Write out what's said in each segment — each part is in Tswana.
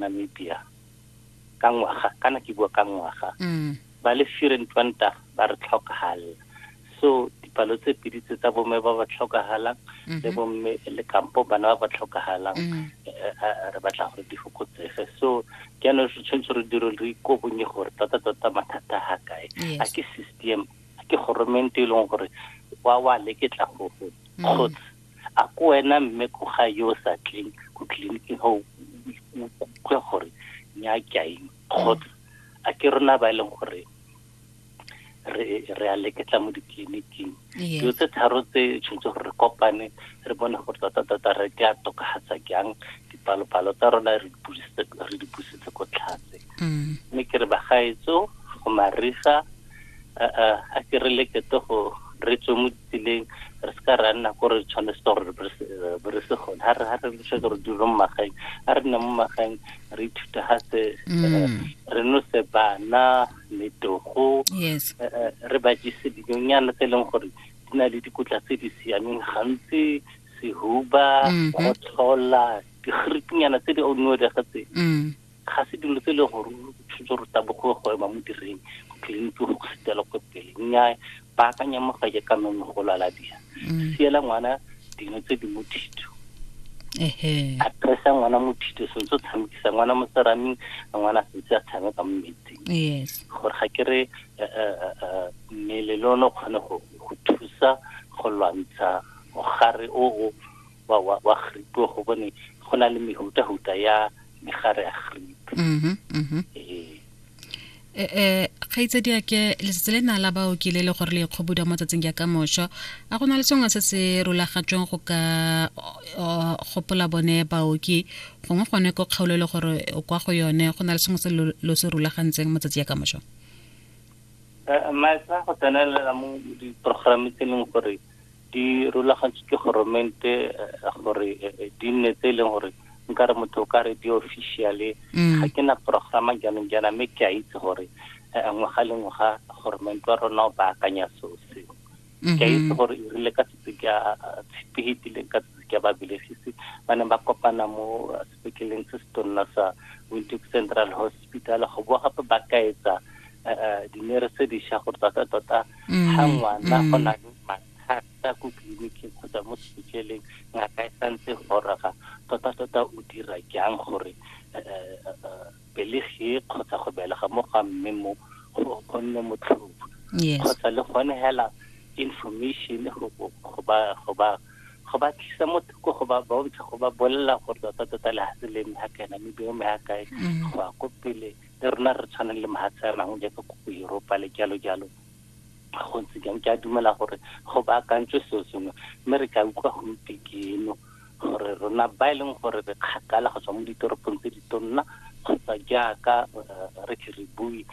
Namibia ka ngwaga kana ke bua ka ngwaga mm. ba le firen twanta ba re tlhokagala so dipalo tse pedi tse tsa bomme ba ba tlhokagalang le mm-hmm. bomme le kampo bana ba ba tlhokagalang mm. eh, eh, re batla gore di fokotsege so ke ano re tshwanetse re dire re ikobonye gore tota tota mathata ga kae a ke system a ke goromente e leng gore wa wa leketla go go mm. kgotsa a ko wena mme ko ga yo sa tleng ko tleliniking ga o utlwe gore nya ke aeng kgotsa a ke rona ba e leng gore re a leketla mo ditleliniking dilo tse tharo tse tshwanetse gore re kopane re bone gore tota-tota re ka tokagatsa jang dipalopalo tsa rona re di busetse ko tlhatse mm. mme ke re bagaetso go mariga a ke re lekete go re tswe mo ditseleng re se ka ra nna ko re tshwanetse gore be re se gone ga re lese gore dilo mo magaeng a re nna mo magaeng re ithuta ga se mm. re nose bana metogo eh, eh, re ba jese dinonyana tse e leng gore di na le dikotla tse di siameng gantsi sehuba mm-hmm. go tlhola digirikinyana tse di onuo di ga tse mm. Ga se dilo tse e leng gore o tshwanetse gore tabogoe go ema mo direng go tlileng ke go sitela ko pele nnyaa ba akanya mo ga ke ka nonne go lala dira mm. siela ngwana dino tse di mo thito a presa ngwana mo thito sentse o tshamekisa ngwana mo seraming ngwana sentse a tshameka mo metsing gore ga ke re eh, eh, eh, mmele le one o kgone go thusa go lwantsha mogare o o wa wa wa gripe go bone go na le mehuta huta ya megare ya gripe mhm mhm eh eh, eh kgaitsedi ya ke letsatsi le na la ba o kile le gore le ikgobuda mo tsatsing ya ka mosho a go na le sengwe se se rulagatsweng go ka gopola bone baoki gongwe gone ko kgaolo e le gore o kwa go yone go na le sengwe se lo se rulagantseng mo tsatsi ya ka mosho eh, maetsa go tsenelela mo diprogramme tse e leng gore di rulagantswe ke goromente eh, gore eh, eh, di nne tse e leng gore nkare motho o ka re di-officially mm. ga ke na programa jaanong jaana mme ke a itse gore ngwaga le ngwaga goromente wa rona o baakanya seo seo mm-hmm. ke a itse gore e rile ka setse ke a tshepegitile ka setse ke a babelegisi ba neng ba kopana mo se ke leng se se tonna sa windhoek central hospital go boa gape ba kaetsa eh, eh, dinere tse dišwa gore tota tota mm, ga ngwana mm. go na le mathata ko tleliniking kgotsa mo sepetleleng ngaka e santse goroga tota tota o dira jang gore eh, Pelegi kgotsa go belega mo ga mme mo go go nne motlhofo. Yes. Kgotsa le gone hela information go go- go ba go ba go ba tlisa mo thoko go ba bontsha go ba bolelela gore tota tota le hase le mme ha kaena mme beo mme ha kae Mm. go ya ko pele le rona re tshwanang le mahatshe a mangwe jaaka ko go Europa le jalo jalo go ntse jang ke a dumela gore go baakantswe seo sengwe mme re tla utlwa gompieno gore rona ba e leng gore re kgakala go tswa mo ditoropong tse di tonna kgotsa jaaka eh, re ke re bue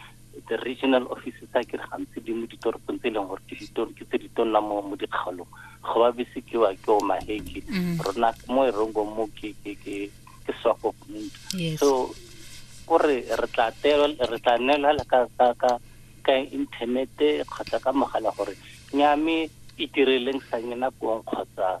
the regional offices a kere gantsi di mo ditoropong tse e leng gore ke ditor- ke tse di tonna mo mo dikgaolong go ba bese ke wa ke o maheke Mm. rona mo e rongo mo ke ke ke ke swako yes so o re re tla tewa- re tla neelwa ka ka ka ka inthanete kgotsa ka mogala gore nyame itireleng sa nyena kong kgotsa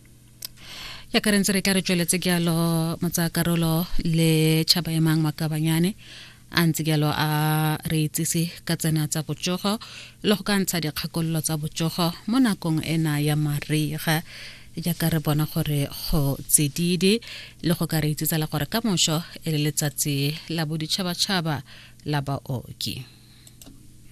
ya ka rentse re tla re tsweletse ke alo motsakarolo le tšhaba emang makabanyane a ntse jalo a re itsise ka tsena tsa botsogo le go ka ntsha dikgakololo tsa botsogo mo nakong ena ya mariga jaaka re bona gore go tsedidi le go ka re itsitsa le gore ka moso e le letsatsi la boditšhabatšhaba la baoki